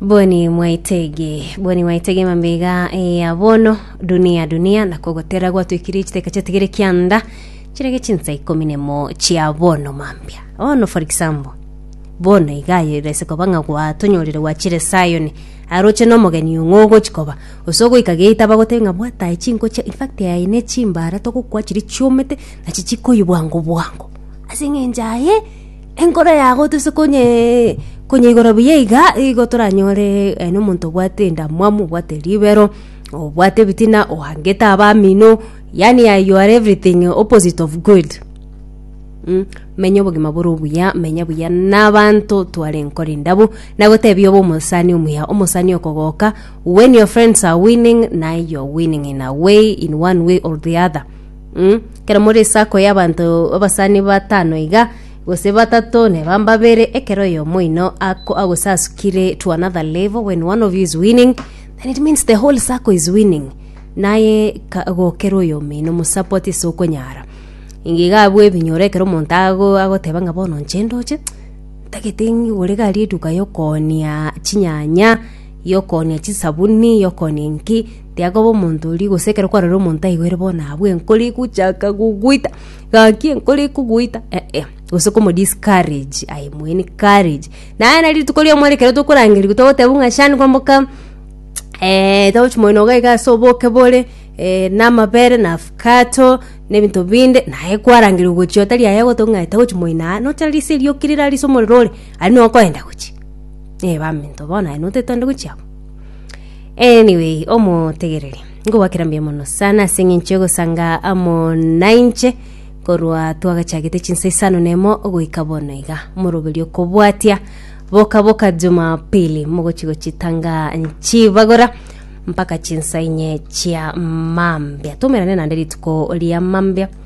boni mwaitege boni mwaitege mambega ya bono dunia dunia nakogotera gwatwikire chiteka chatigere kianda chirege chinsa ikomi nemo chia bono mambia bono for example bono igayo irese koba ng'a gwatonyorire gwachire sayoni aroche nomogeni ong'o ogochi koba gose ogoika gate abagotebia ng'a bwata aye chinko chia infact aye ne chimbara togokwa chiria chiomete nachi chikoywa bwango bwango ase eng'encho aye Enkoro yago tose konye konyeigora buya iga, igo toranyore aye nomonto obwate endamwamu, obwate ribero, obwate ebitina, ohangete abamino, yaani aye you are everything opposite of good mm menya obogima bore obuya, menya buya na abanto tware enkoro endabwo, nagotebia obe omosani omuya, omosani okogoka when your friends are winning naye you are winning in a way in one way or the other. Mm, ekero more esako y'abanto abasani batano iga, gose batato, neba mbabere, ekero oyomo oino ako- agosasukire to another level, when one of you is winning, then it means the whole circle is winning. Naye ka- gokera oyomo oino omosupport ase okonyara. Inga iga abwo ebinyoro ekero omonto ago- agoteba ng'a bono inche ndoche, ntagete ng'igore gari eduka yokoonia chinyanya, y'okoonia chisabuni, y'okoonia inki, tiakoba omonto oria gose ekero kwarorire omonto aigwere bono abwo enkoro egochaka gogoita, gaki enkoro ekogoita eh-eh, gose komo discourage aye mweene courage. Naye nari rituko ri'omoa ere ekero tokorangerigwa togotebwa buna Sean kwamoka togochia moino iga iga ase oboke bore na amabere na avocado na ebinto binde, naye kwarangerigwa gochia otari aye agoteba ng'a togochia moino aa, nocha risa erio okire rarisa omorero ore, aria nokoenda gochia. Eh baminto bono aye notete onde gochia abwo. Anyway, omotegereri. Ngobwakera mbuya mono sana ase eng'encho egosanga amo nainche korwa twagachagete chinsa isano nemo goika bono iga moroberio kobwatia boka boka jumapili mogochi gochitanga nchibagora mpaka chinsa inye chia mambia tumerane nande rituko ria mambia